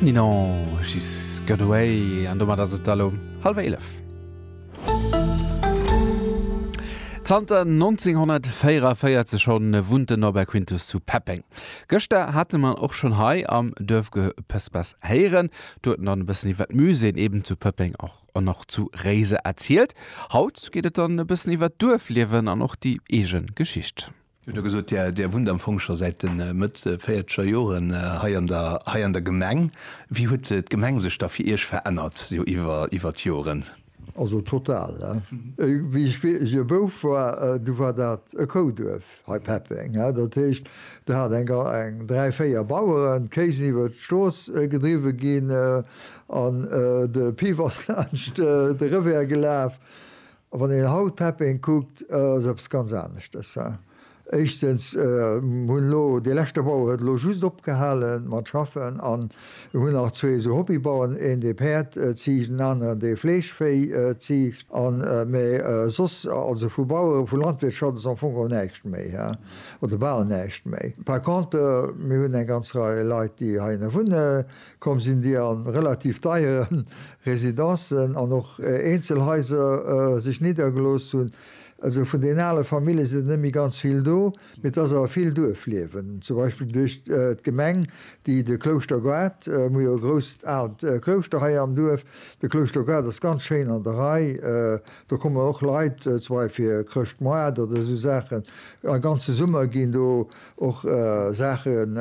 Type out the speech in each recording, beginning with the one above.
Nino, she's got away an domat ass et da lo hallwer 11. Zanter 1944 schonn wunnt den Norbert Quintus zu Peppeng. Gëschter hate mer en och schonn hei am Duerfgepëspers héieren. Do huet en dann e bëssen iwwer d'Muséeën eben zu Pëppeng an och zu Réiser erzielt. Haut geet et dann e bëssen iwwer d'Duerfliewen an och déi eege Geschicht. Dir hutt jo gesot, Dir wunnt am Fong scho säit de Mëtt véierzeger Joren hei an der Gemeng. Wéi huet d'Gemeng sech da fir Iech verännert iwwer d'Joren? Also total. Wéi ech e Bouf war, du war dat e Kouduerf hei Peppeng. Dat heescht, der hat eng dräi, véier Baueren, d'Kéisen iwwer d'Strooss gedriwwe ginn an de Piff ass laanscht de Revers gelaf. A wann een haut Peppeng kuckt, ass eppes ganz aneschtes. Éischtens hunn elo, dee leschte Bauer huet elo just opgehale mat schaffen an hunn nach zwee esou Hobbybauern, een dee Päerd ziicht, en aneren dee Fleeschvéi ziicht an, mä soss, also vu Bauere, vu Landwirtschaft ass am Fong och näischt méi oder bal näischt méi. Par contre, mir hunn eng ganz Rei Leit, déi heihinne wunnen, Komm sinn déi a relativ deiere Residencen an och Eenzelhaiser sech niddergelooss hunn. Also vun den ale Famillje sinn der net méi ganz vill do, mee et ass awer vill Duerfliewen, zum Beispill duerch d'Gemeng, déi de Klouschtergoart, mir hu jo e grousst aalt Klouschter hei am Duerf, de Klouschtergoart ass ganz schéin an der Rei, do kommen och Leit zum Beispill fir Chrëschtmoart oder esou Saachen, a ganze Summer ginn do, Och Saachen,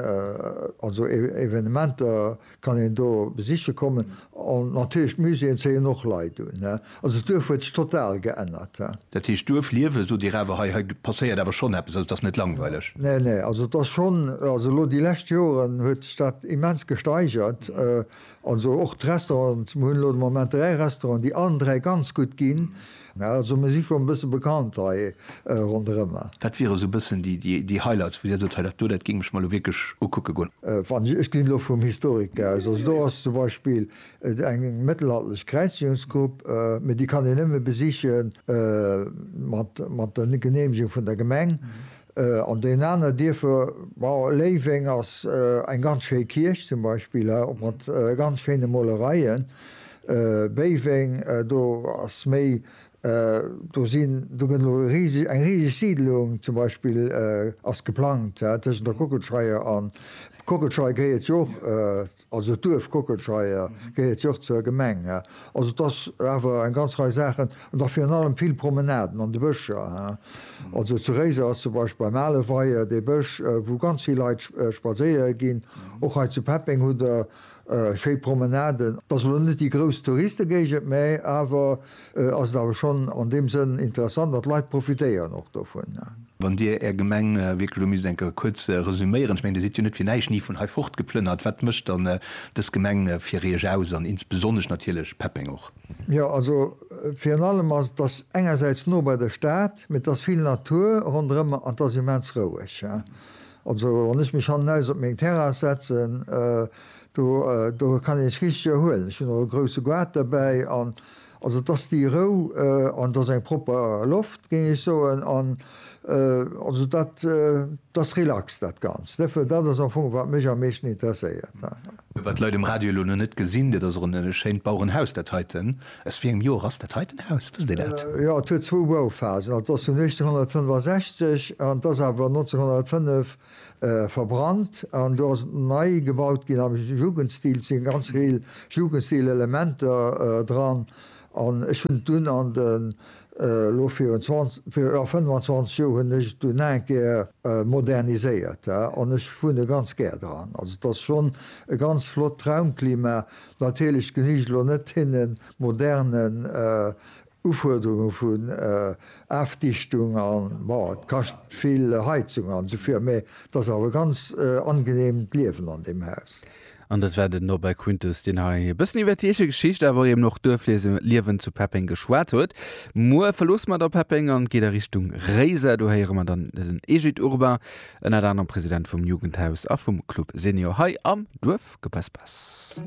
also Evenementer kann een do besiche kommen. An natierlech d'Muséeën zéien och Leit un. Also d'Duerf huet sech total geännert. Dat heescht d'Duerf liewen, sot Dir awer, hei hei passéiert awer schonn eppes, also et ass net langweileg? Nee, nee, also et ass schonn, also elo déi lescht Joren huet sech dat immens gesteigert. Also och d'Restaurants, mir hunn elo de Moment dräi Restauranten, déi allen dräi ganz gutt ginn. Mä also mir si scho e bësse bekannt hei ronderëmmer. Wat wiere esou e bëssen déi Highlights, wou Dir sot, hei dat do, dat géing ech mer elo wierklech ukucke goen? Wann ech, ech ginn elo vum Historiker aus, also do ass zum Beispill eng mëttelalterlech Kräizigungsgrupp, mä déi kann een nëmme besichen mat der Geneemegung vun der Gemeng. An deen aner Dierfer, Léiweng ass eng ganz schéi Kierch zum Beispill, och mat ganz schéine Molereien. Béiweng, do ass méi, do sinn, do gëtt elo riseg, eng riseg Siidlung zum Beispill ass geplangt tëschent der Kockelscheier an, d'Kockelscheier gehéiert jo och Also d'Duerf Kockelscheier gehéiert jo och zur Gemeng. Also et ass awer eng ganz Rei Saachen, an da virun allem vill Promenaden an de Bëscher. Also zu Réiser ass zum Beispill beim ale Weier dee Bësch, wou ganz vill Leit spadséiere ginn. Och hei zu Peppeng hutt Der schéi Promenaden. Et ass elo net déi grouss Touriste-Géigend, mä awer ass et awer schonn an deem Sënn interessant an d'Leit profitéieren och dovun. Wann Dir Är Gemeng wierklech elo misst eng Kéier kuerz resüméieren, ech mengen, Dir sidd jo net fir näischt ni vun hei fortgeplënnert, wat mécht dann dës Gemeng fir Iech aus an insbesonnesch natierlech Peppeng och? Jo, also virun allem ass et, dass engersäits no bei der Stad, mee et ass vill Natur ronderëm an et ass immens roueg. Also wann ech mech hannenaus op meng Terrass setzen, do kann ee sech richteg erhuelen. Ech hunn och e grousse Goart derbäi an. Also et ass déi Rou an et ass eng propper Loft, géing ech soen. An also dat, dat ass relax, dat Ganzt. Dofir, dat ass am Fong, wat mech am meeschten interesséiert. Wat d'Leit um Radio elo nach net gesinn, dat ass och e schéint Bauerenhaus, dat heiten. Aus wéi engem Joer ass dat heiten Haus? Wësst Dir dat? Jo, et huet zwou Bauphasen. Also et ass vun 1865 an et ass awer 1905 verbrannt an do ass et nei gebaut ginn am Jugendstil, et si ganz vill Jugendstil-Elementer dran an ech hunn et dunn an de, elo virun 20, jo 25 Joer hunn ech et dunn nach eng Kéier moderniséiert an ech wunne ganz gär dran. Also et ass schonn e ganz flott Raumklima. Natierlech genügt elo net hinne modernen Ufuerderunge vun Afdichtung an, bon, et kascht vill Heizung an esou vir, mä et ass awer e ganz angeneemt d'Liewen an deem Haus. An dat war den Norbert Kuntes, deen hei e bëssen iwwer d'Eeche Geschicht, awer eben och d'Duerfliewen zu Peppeng geschwat huet. Muer verloosse mer da Peppeng an geet a Richtung Réiser. Do héiere mer dann den Egid Urbain, ënnert anerem President vum Jugendhaus a vum Club Senior hei am Duerfgepaspas.